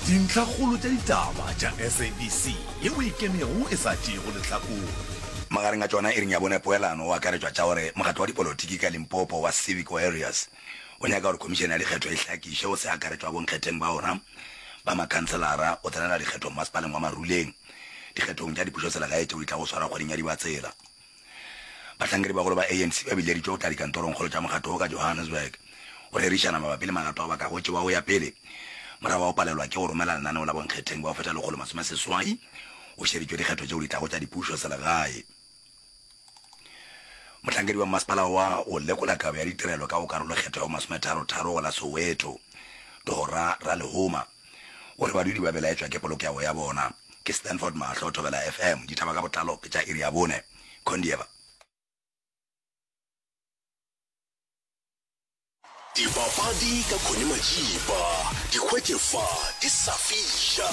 Dintlhakgolo tša ditaba tša SABC ye o e kenego e sa tšeego lehlakore. Magareng a tšona iring ya bone poelano o akaretšwa tša gore mokgatlo wa dipolotiki ka Limpopo wa Civic Warriors o nyaka gore Khomišene ya Dikgetho e hlakiše go se akaretšwa bonkgetheng ba ona ba makhanselara go tsenela dikgetho mmasepaleng wa Maruleng dikgethong tša dipušoselegae tšeo di tlago swarwa kgweding ya Dibatsela. Bahlankedi-bagolo ba ANC ba bileditšwe go tla dikantorongkgolo tša mokgatlo wo ka Johannesburg go rerišana mabapi le magato ao ba ka go tšewa go ya pele morago ga go palelwa ke go romela lenaneo la bonkgetheng bao feta lekgolo masome seswai go šeditšwe dikgetho tšeo di tlago tša dipušo selegae. Mohlankedi wa mmasepala wa go lekola kabo ya ditirelo ka go karolokgetho ya bo masometharo-tharo go la Soweto, Tohora Ralehuma, O re badudi ba belaetšwa ke polokego ya bona ke Stanford Mahlo Thobela FM, dithaba ka botlalo ke tša iri ya bone. Condieva. Dipapadi ka Connie Majiba, di hwetše fa di sa fiša.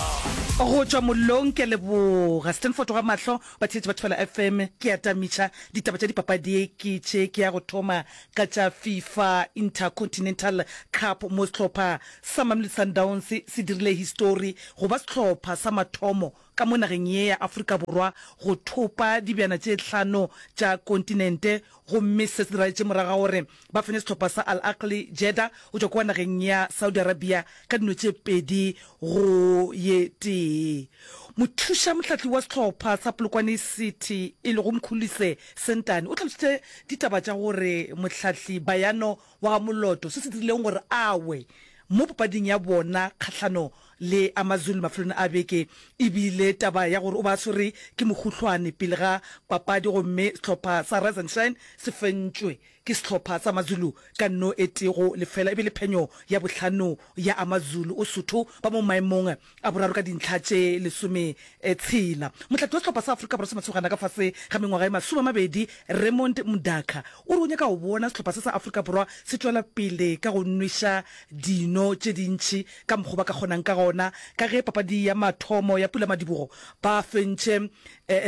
Go tšwa mollong ke a leboga Stanford wa mahlo, batheetši ba Thobela FM ke a tamitša, ditaba tša dipapadi ke tše ke ya go thoma ka tša Fifa Intercontinental Cup mo sehlopha sa Mamelodi Sundowns se dirile histori go ba sehlopha sa mathomo ka mo nageng ye ya Afrika Borwa go thopa dibjana tše hlano tša kontinente gomme se se laetše morago ga gore ba fenye sehlopha sa Al Ahly Jeddah go tšwa kua nageng ya Saudi Arabia ka dino tše pedi go ye tee. Mothuša mohlahli wa sehlopha sa Polokwane City e lego Mkhulise Sentane o tlhalositše ditaba tša gore mohlahli Bayano wa ga Moloto se se dirilego gore a we mo papading ya bona kgahlano le AmaZulu mafelelong a beke e bile taba ya gore o be a swere ke mohuhlwane pele ga papadi gomme sehlopha sa Rise and Shine se fentšwe Ke sehlopha sa Mazulu ka nno e tee go lefela e be le phenyo ya bohlano ya Amazulu. Osotho ba mo maemong a boraro ka dintlha tše lesome tshela. Mohlahli wa sehlopha sa Afrika Borwa sa Masogana ka fase ga mengwaga e masome a mabedi Raymond Mudaka o re o nyaka go bona sehlopha se sa Afrika Borwa se tšwela pele ka go nweša dino tše dintši ka mokgo ba ka kgonang ka gona ka ge papadi ya mathomo ya Pula Madibogo ba fentše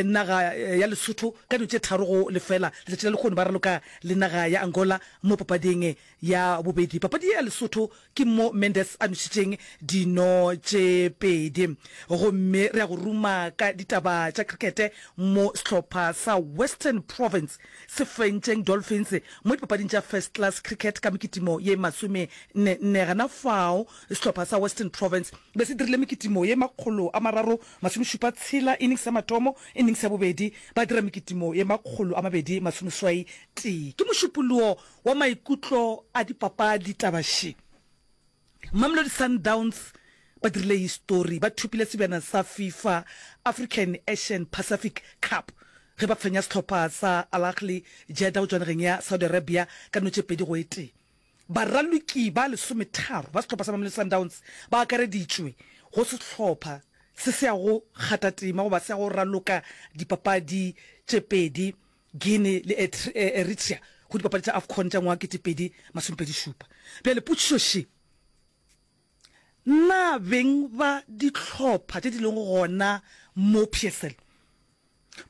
naga ya Lesotho ka dilo tše tharo go lefela letšatši la lekgoni ba raloka le naga ya Angola mo papading ya bobedi. Papadi ye ya Lesotho ke mo Mendes a nwešitšeng dino tše pedi. Gomme re ya go ruma ka ditaba tša krikete mo sehlopha sa Western Province se fentšeng Dolphins mo dipapading tša First Class Cricket ka mekitimo ye masome nne nne. Gana fao sehlopha sa Western Province be se dirile mekitimo ye makgolo a mararo Masomešupa tshela e nix ya matomo e nix ya bobedi ba dira mekitimo ye makgolo a mabedi masomeswai tee. Ke mošupolowo wa maikutlo a dipapadi taba še. Mamelodi Sundowns ba dirile histori, ba thopile sebjana sa FIFA African Asian Pacific Cup ge ba fenya sehlopha sa Al Ahly Jeddah go tswa nageng ya Saudi Arabia ka notšepedi go e tee. Baraloki ba lesometharo ba sehlopha sa Mamelodi Sundowns ba akareditšwe go sehlopha se se yago gata tema goba se yago raloka dipapadi tše pedi, Guinea le Eritrea, go dipapadi tša Afcon tša ngwaga kete pedi masome pedi šupa. Bjale potšišo še, Na beng ba dihlopha tše di lego gona mo PSL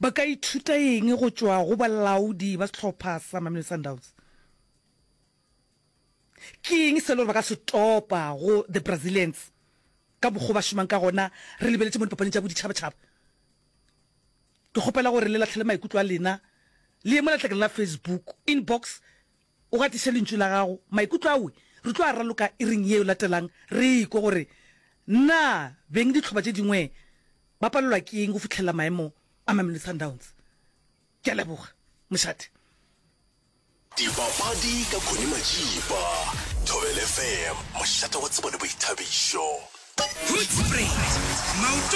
ba ka ithuta eng go tšwa go balaodi ba sehlopha sa Mamelodi Sundowns? Ke eng se e le gore ba ka se topa go the Brazilians ka mokgwa ba šomang ka gona re lebeletše mo dipapaneng tša boditšhabatšhaba? Ke kgopela gore le latlhele maikutlo a lena le ye mo letlakeng la Facebook inbox o gatiše lentšu la gago. Maikutlo awe re tlo a raloka iring ye e latelang re ekwe gore na beng ditlhoba tše dingwe ba palelwa ke eng go fihlelela maemo a Mamelodi Sundowns. Ke a leboga, mošate. Dipapadi ka Connie Majiba, Thobel FM, mošate wa tsebo le boithabišo. Hoedspruit, maoto